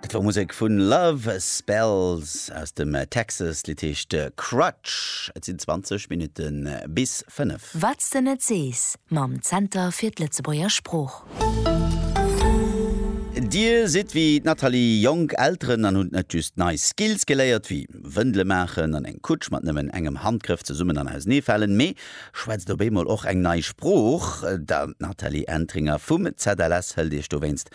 Dat war Musek vu Love Spells aus dem Texas. D'Lidd heescht Crutch. Et sinn 20 Minutte bis 5. Wat's de net sees mam Zenter fir d'Lëtzebuerger Sprooch. Dir sidd wéi d'Nathalie jonk Elteren an hutt net just nei Skills geléiert, wéi Wëndele maachen an eng Kutsch mat nëmmen engem Handgrëff zesummen an auseneefalen, mee Schwätzt op eemol och eng nei Sprooch. D'Nathalie Entringer vum ZLS hëlt iech dowéinst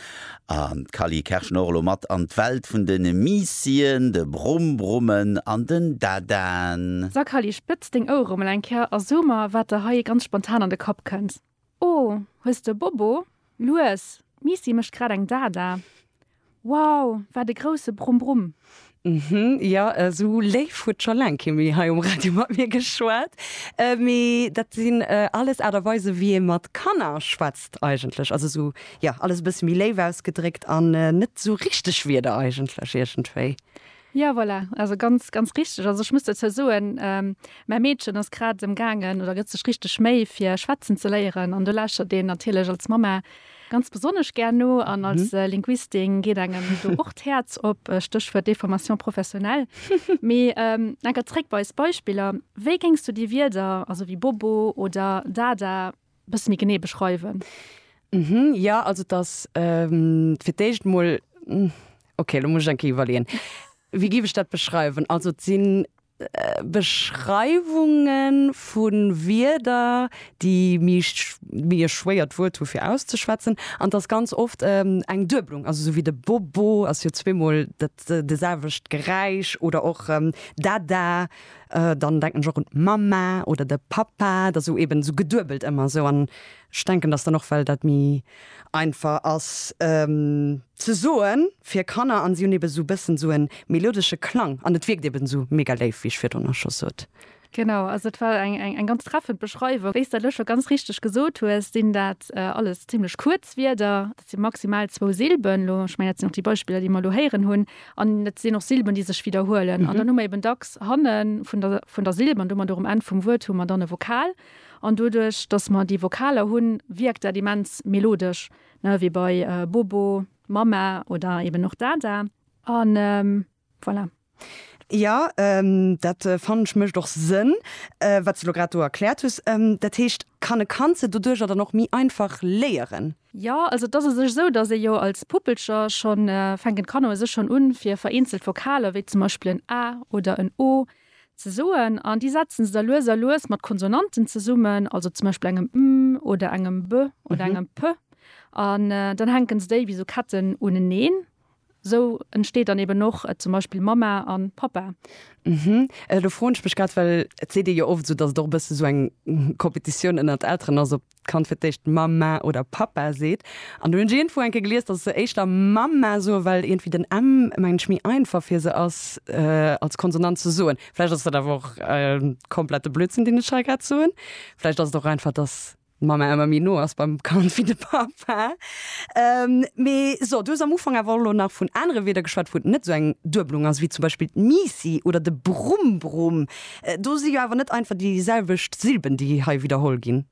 an d'Cally Kerschnorlo mat an d'Welt vun de Miissien, de Brumbrummen an den Dadaen. Sa Cally, spëtz deng Ouere mol eng Kéier a so mer, wat der hei ganz spontan an de Kapp kënnt. Oh, hues de Bobo? Lues, d'Misi mécht grad eng Dada. Wow, wat e grousse Brumm-Brumm! Mhm, jo, esou léif huet scho laang kee méi hei um Radio mat mir geschwat. Mee dat sinn alles Aart a Weisen, wéi ee mat Kanner schwätzt eigentlech. Also esou, jo, alles e bësse méi léif ausgedréckt an net esou richteg Wierder eigentlech iergendwéi. Jo voilà, also ganz ganz richteg. Also ech muss dozou soen, mäi Meedchen ass grad emgaangen oder gëtt sech richteg Méi fir schwätzen ze léieren an do lauschtert een natierlech als Mamma ganz besonnesch gär no an als Linguistin geet engem do och d'Häerz op, Stéchwuert Déformation professionnelle. Mee enker zréck bei eis Beispiller, Wéi géings du déi Wierder, also wéi Bobo oder Dada, bësse méi genee beschreiwen? Mhm, ja, also et ass fir d'éischt emol, okay, elo muss ech eng Kéier iwwerleeën, wéi géif ech dat beschreiwen? Also et si Beschreiwunge vu Wierder, déi méi méi e schwéiert Wuert hu fir auszeschwätzen. An et ass ganz oft eng Dueblung, also esou wéi de Bobo ass jo zweemol dat de selwecht Geräisch oder och Dada. Dann denken ech och un d'Mamma oder de Pappa, et ass esou eben esou geduebelt ëmmer esou. An ech denken, datt dann och, well dat méi einfach ass ze soen fir Kanner an si hunn eben esou e bëssen esou e melodesche Klang an et wierkt eben esou mega léif, wéi ech virdrun och scho sot. Genau, also et war eng ganz treffend Beschreiwung. Wéi s de elo scho ganz richteg gesot hues, sinn dat alles zimmlech kuerz Wierder. Et si maximal zwou Silben elo. Ech mengen, dat sinn och déi Beispiller, déi mer elo héieren hunn. An et sinn och Silben, déi sech widderhuelen. An dann hu mer eben dacks hanne vun der, vun der Silb an domadder och um Enn vum Wuert hu mer dann e Vokal. An doduerch, datt mer déi Vokaler hunn, wierkt dat immens melodesch, ne, wéi bei Bobo, Mama oder eben och Dada. An. Voilà. Jo, dat fannen ech mécht och Sënn, wat s de elo grad do erkläert hues. Dat heescht, kann e Kand se doduercher dann och méi einfach léieren? Jo, also et ass u sech esou, datt ee jo als Puppelcher schonn, fänken d'Kanner u sech schonn un, fir vereenzelt Vokaler, wéi zum Beispill en a oder en o ze soen. An déi setzen se da lues a lues mat Konsonanten zesummen, also zum Beispill engem m oder engem b oder engem p. An dann hänken se déi wéi esou Ketten uneneen. Sou entsteet dann eben och zum Beispill Mamma an Pappa. Hm, elo froen ech mech grad, well et seet ee jo oft esou, dass et och e bësse sou eng Competitioun ënnert Elteren ass, ob d'Kand fir d'éischt Mamma oder Pappa seet. An do hunn ech iergendwou eng Kéier gelies, dass se éischter Mamma soen, well iergendwéi den M, mengen ech, méi einfach fir se ass als Konsonant ze soen. Vläicht ass dat awer och komplette Blödsinn, deen ech hei grad soen. Vläicht ass et och einfach, dass. D'Mamma ëmmer méi no ass beim Kand wéi de Papa. Mee so, du hues am Ufank awer och elo nach vun anere Wierder geschwat, wou et net esou eng Duebelung ass, wéi zum Beispill d'Misi oder de Brumm-Brumm. Do si jo awer net einfach déi selwecht Silben, déi hei widderholl ginn.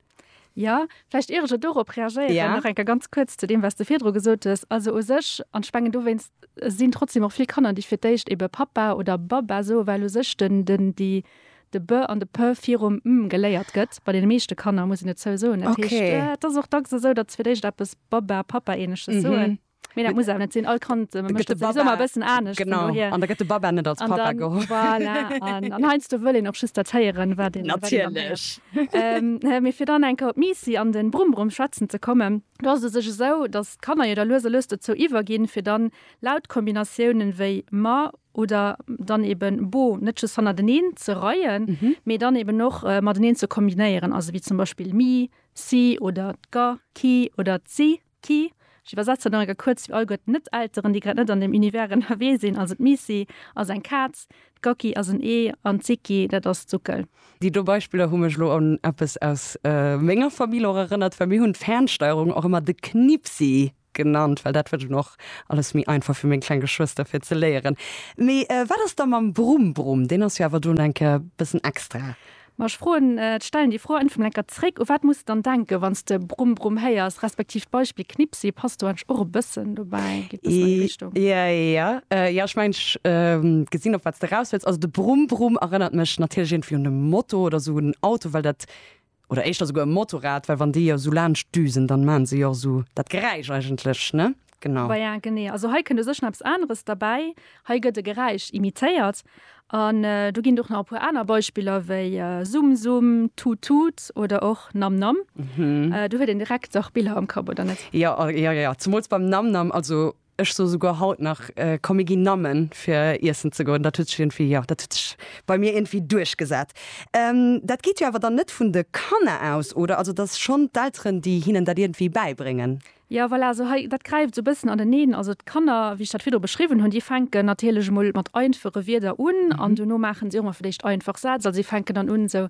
Jo, vläicht ier ech elo dorop reagéieren, nach eng Kéier ganz kuerz zu deem, wat s de virdru gesot hues. Also u sech, an ech mengen dowéinst sinn trotzdem och vill Kanner, déi fir d'éischt ebe Pappa oder Babba soen, well u sech den, den, déi, de b an de p virum m geléiert gëtt, bei deene meeschte Kanner, muss een dozou soen. Dat heescht, Okay. et ass och dacks esou, datt se fir d'éischt eppes Baba, Papa-ähnleches soen. Mee dat muss awer net sinn. All Kand Gëtt mécht de dat souwisou Baba- emol e bëssen anescht. Vun Genau. dohier. An da gëtt de Baba net als An Papa dann, geholl. voilà, an, an heiansdo wëll een och just dat héieren, wat een, wat een dann héiert. Natierlech. Ähm, mee fir dann eng Kéier op d'Misi an de Brumm-Brumm schwätzen ze kommen, do ass et u sech esou, datt d'Kanner jo da lues a lues dozou iwwerginn, fir dann Lauttkombinatiounen wéi ma oder dann eben bo net just hannerteneen ze reien, mee dann eben och mateneen ze kombinéieren, also wéi zum Beispill mi, si oder d'ga, ki oder d'si, ki. Ech iwwersetze nach eng Kéier kuerz fir all guer d'Net-Elteren, déi grad net an deem Univers ënnerwee sinn. Also d'Misi ass eng Kaz, d'Gacki ass en Ee an d'Siki, dat ass d'Suckel. Déi do Beispiller hu mech elo un eppes aus menger Famill och erënnert, well mir hunn d'Fernsteierung och ëmmer de Knippsi genannt, well dat wëllt un och alles méi einfach fir meng kleng Geschwëster fir ze léieren. Mee wat ass da mam Brumm-Brumm? Deen ass jo awer dunn enke bëssen extra. Ma ech froen, stellen déi Fro einfach mol enker zréck, u wat muss de dann denken, wann s de Brumm-Brumm héiers, respektiv d'Beispill Knippsi passt do eigentlech och e bëssen dobäi, geet e bëssen an déi Richtung. Je, jo, jo, ech mengen, ech gesinn, op wat s de eraus wëlls. Also de Brumm-Brumm erënnert mech natierlech iergendwéi un e Moto oder esou un en Auto, well dat oder éischter souguer e Motorrad, well wann déi jo esou laanscht düsen, dann maachen se jo och esou dat Geräisch eigentlech, ne? Genau. Bah ja, genee. Also hei kënnt u sech nach eppes aneres derbäi, hei gëtt e Geräisch imitéiert an do ginn et och nach e puer aner Beispiller wéi Summ Summ, Tut Tut oder och Nam Nam. Do huet een direkt dach Biller am Kapp, oder net? Jo, jo, jo, zemools beim Nam Nam. Also. Ech soe souguer haut nach, komm mir ginn Nammen fir iessen ze goen. Dat huet sech iergendwéi, jo, dat huet sech bei mir iergendwéi duerchgesat. Dat geet jo awer dann net vun de Kanner aus, oder? Also, et ass schonn d'Elteren, déi hinnen dat iergendwéi bäibréngen. Jo, voilà, esou hei, dat gräift esou e bëssen aneneen. Also d'Kanner, wéi ech dat virdru beschriwwen hunn, déi fänken natierlech emol mat einfache Wierder un an dono maachen si och emol vläicht einfach Sätz. Also si fänken dann un esou.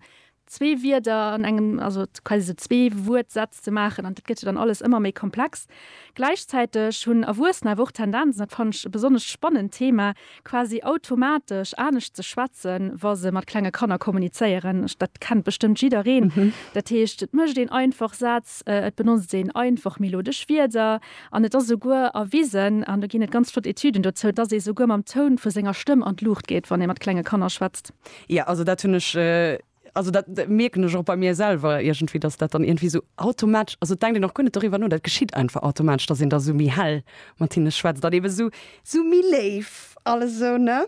zwee Wierder an engem, also quasi sou zwee Wuertsätz ze maachen an dat gëtt jo dann alles ëmmer méi komplex. Gläichzäiteg hunn Erwuessener awer och d'Tendenz, an dat fannen ech e besonnesch spannend Thema, quasi automatesch anescht ze schwätzen, wa se mat klenge Kanner kommunizéieren. Dat kennt bestëmmt jiddereen. Dat heescht, et mécht een einfach Sätz, et benotzt een einfach melodesch Wierder an et ass esouguer erwisen, an do ginn et ganz flott Etüden dozou, dass ee souguer mam Toun vu senger Stëmm an d'Luucht geet, wann ee mat klenge Kanner schwätzt. Ja, also dat hunn ech, also dat mierken ech och bei mir selwer iergendwéi, datt dat dann iergendwéi esou automatesch, also et denkt een och guer net doriwwer no, dat geschitt einfach automatesch, datt een da esou méi hell mat hinne schwätzt an eebe esou, esou méi léif alles esou, ne?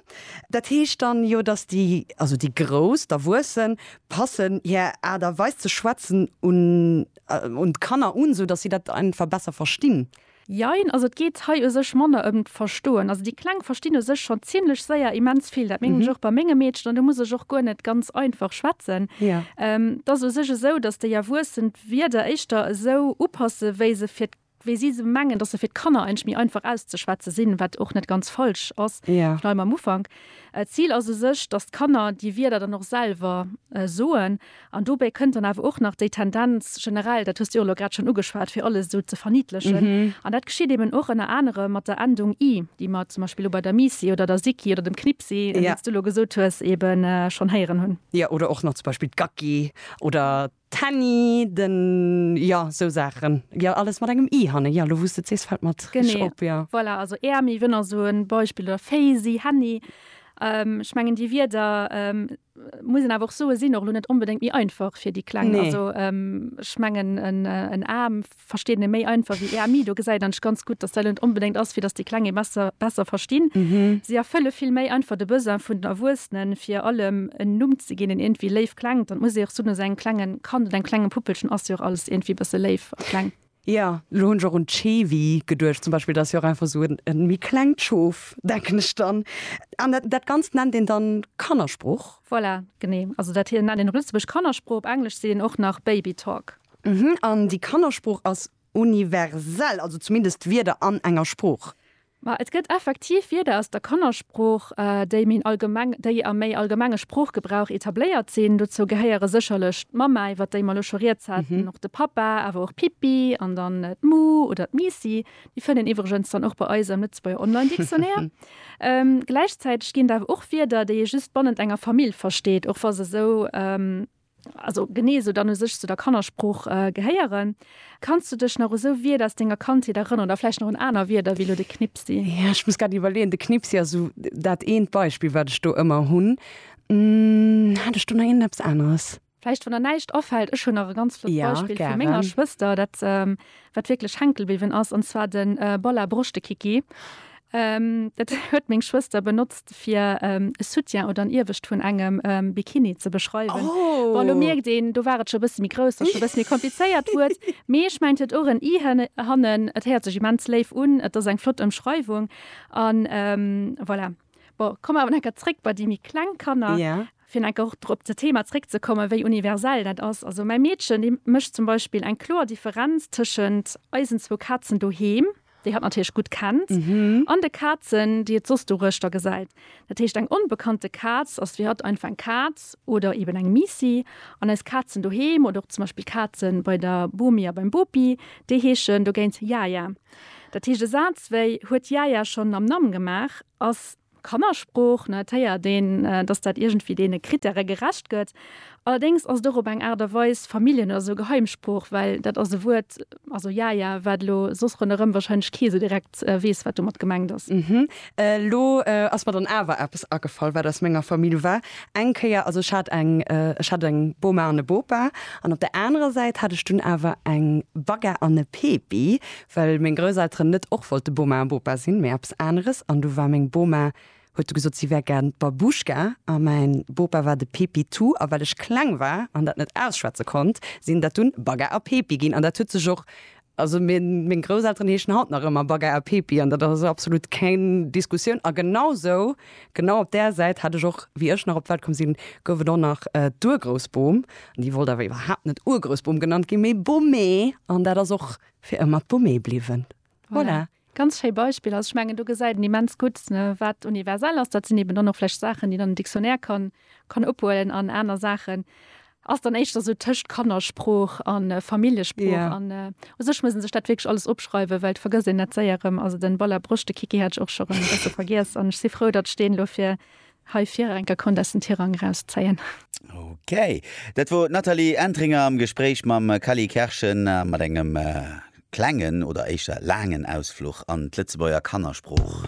Dat heescht dann jo, datt déi, also déi Grouss, d'Erwuessen, passen hir Aart a Weis ze schwätzen un, un d'Kanner un, esou datt si dat einfach besser verstinn. Jein, also et geet hei u sech manner ëm d'Verstoen. Also déi Kleng verstinn u sech schonn zimlech séier immens vill. Dat mengen ech och bei menge Meedchen an do muss ech och guer net ganz einfach schwätzen. Et ass u sech esou, datt déi Erwuessen d'Wierder éischter esou upassen, wéi se fir, wéi si se mengen, datt se fir d'Kanner eigentlech méi einfach auszeschwätze sinn, wat och net ganz falsch ass. Ech bleiwen mam Ufank. D'Zil ass u sech, datt d'Kanner déi Wierder dann och selwer soen. An dobäi kënnt dann awer och nach déi Tendenz generell, dat hues de jo elo grad schonn ugeschwat, fir alles esou ze verniedlechen. An dat geschitt eben och ënner anerem mat der Endung i, déi mer zum Beispill elo bei der Misi oder der Siki oder dem Knipsi, wéi s du elo gesot hues, eben schonn héieren hunn. Jo, oder och nach zum Beispill d'Gacki oder d'Henni, den, jo, esou Saachen. Jo, alles mat engem i hannen. Jo, elo wou s de et sees, fält mer et richteg op, jo. Voilà, also Äermi, wënner esou e Beispill, oder Féisi, Henni. Ech mengen déi Wierder. muss een awer och soen, sinn och lo net onbedéngt méi einfach fir déi Kleng. Nee. Also ech mengen en A versteet een méi einfach wéi EMI. Do gesäit een ganz gutt, dass dat lo net onbedéngt ass fir dass déi Kleng ee besser besser verstinn. Si erfëlle vill méi einfach de Besoin vun den Erwuessenen, fir allem en Numm ze ginn, deen iergendwéi léif klengt. An et muss ee och soen, esou engem klengen Kand oder engem klenge Puppelchen ass jo och alles iergendwéi e bësse léif a kleng. Ja, elo hunn ech och un d'Schewi geduecht zum Beispill. Dat ass jo och einfach esou e méi klengt Schof, denken ech dann. An dat Ganzt nennt een dann Kannersprooch? Voilà, genee. Also dat hei nennt een op Lëtzebuerg Kannersprooch, op Englesch seet een och nach Baby Talk. An déi Kannersprooch ass universell, also zumindest d'Wierder an enger Sprooch? Ma et gëtt effektiv Wierder aus der Kannersprooch, déi méi allgemeng, déi am méi allgemenge Sproochgebrauch etabléiert sinn. Dozou gehéiere sécherlech d'Mamma, iwwer déi mer elo scho Rieds haten, och de Pappa, awer och Pippi an dann d'Mu oder d'Miissi. Déi fënnt een iwwregens dann och bei eis am Lëtzebuerger Online-Dictionnaire. Gläichzäiteg ginn et awer och Wierder, déi ee just bannent enger Famill versteet, och wa se esou also genee esou dann u sech zu der Kannersprooch gehéieren. Kanns du dech nach u sou Wierder aus denger Kandheet erënneren oder vläicht nach un aner Wierder wéi elo de Knipsi? Jo, ech muss grad iwwerleeën. De Knipsi ass esou dat eent Beispill, wat ech do ëmmer hunn. Hat ech do nach iergend eppes aneres? Vläicht, wann der näischt afält. Ech hunn nach e ganz flott Beispill vu menger Schwëster, dat wat wierklech hänke bliwwen ass, an zwar de Bolla Broschtekiki. Dat huet meng Schwëster benotzt, fir e Soutien oder en Iewescht vun engem Bikini ze beschreiwen. Bon, elo mierkt een, do war et scho e bësse méi grouss, datt et scho e bësse méi komplizéiert wuert. Mee ech mengen, et huet och en i hannen. Et héiert sech immens léif un, et ass eng flott Ëmschreiwung an voilà. Bon, komme mer awer nach eng Kéier zréck bei déi méi kleng Kanner. Jo. Fir nach eng Kéier och op dat Thema zréckzekommen, wéi universell dat ass. Also mäi Meedchen, déi mécht zum Beispill eng kloer Differenz tëschent eisen zwou Kazen doheem, déi hatt natierlech gutt kennt, an de Kazen, déi et soss doruechter gesäit. Dat heescht, eng onbekannte Kaz ass fir hatt einfach eng Kaz oder eeben eng Miissi. An eis Kazen doheem oder och zum Beispill d'Kaze bei der Bomi a beim Bopi, déi heeschen dogéint Yaya. Dat heescht, e Saz wéi huet d'Yaya schonn mam Namm gemaach ass Kannersprooch, ne? Et héiert een, dass dat iergendwéi deene Krittäre gerecht gëtt. Allerdéngs ass et och op eng Aart a Weis Familljen oder esou Geheimsprooch, well dat ass e Wuert, also Yaya, wat elo soss ronderëm warscheinlech kee sou direkt weess, wat domat gemengt ass. Elo ass mer dann awer eppes agefall, wat aus menger Famill war. Eng Kéier, also ech hat eng, ech hat eng Boma an e Bopa an op der anerer Säit hat ech dunn awer eng Bagga an e Pepi, well meng Grousselteren net och wollte Boma a Bopa sinn, mee eppes aneres. An du war meng Boma, huet du gesot, si wär gären d'Babouschka a mäin Bopa war de Pepitou. A well ech kleng war an dat net ausschwätze konnt, sinn dat dunn Bagga a Pepi ginn. An dat huet sech och Also meng Grousselteren heeschen haut nach ëmmer Bagger a Pepi an dat ass also absolut keng Diskussioun. A genau sou, genau op där Säit hat ech och, wéi ech nach op d'Welt komm sinn, gouf et och nach d'Urgroussbom. An déi wollt awer iwwerhaapt net Urgroussbom genannt ginn, mee Bommee. An dat ass och fir ëmmer d'Bommee bliwwen. Voilà. Ganz schéi Beispill. Also ech mengen do gesäit en immens gutt wat universell ass. Dat sinn eben dann och vläicht Saachen déi dann en Dictionnaire kann kann ophuelen an aner Saachen ass dann éischter sou tëscht Kannersprooch a Familljesprooch an u sech muss en sech dat wierklech alles opschreiwen, well et vergësst een dat séier erëm. Also den Ball à broche de Kiki hat ech och scho rëm e bësse vergiess an ech si frou datt ech deen elo fir Hei virenker konnt aus den Tirang eraus zéien. Ok, dat wor d'Nathalie Entringer am Gespréich mam Kally Kerschen mat engem klengen oder éischter laangen Ausfluch an d'Lëtzebuerger Kannersprooch.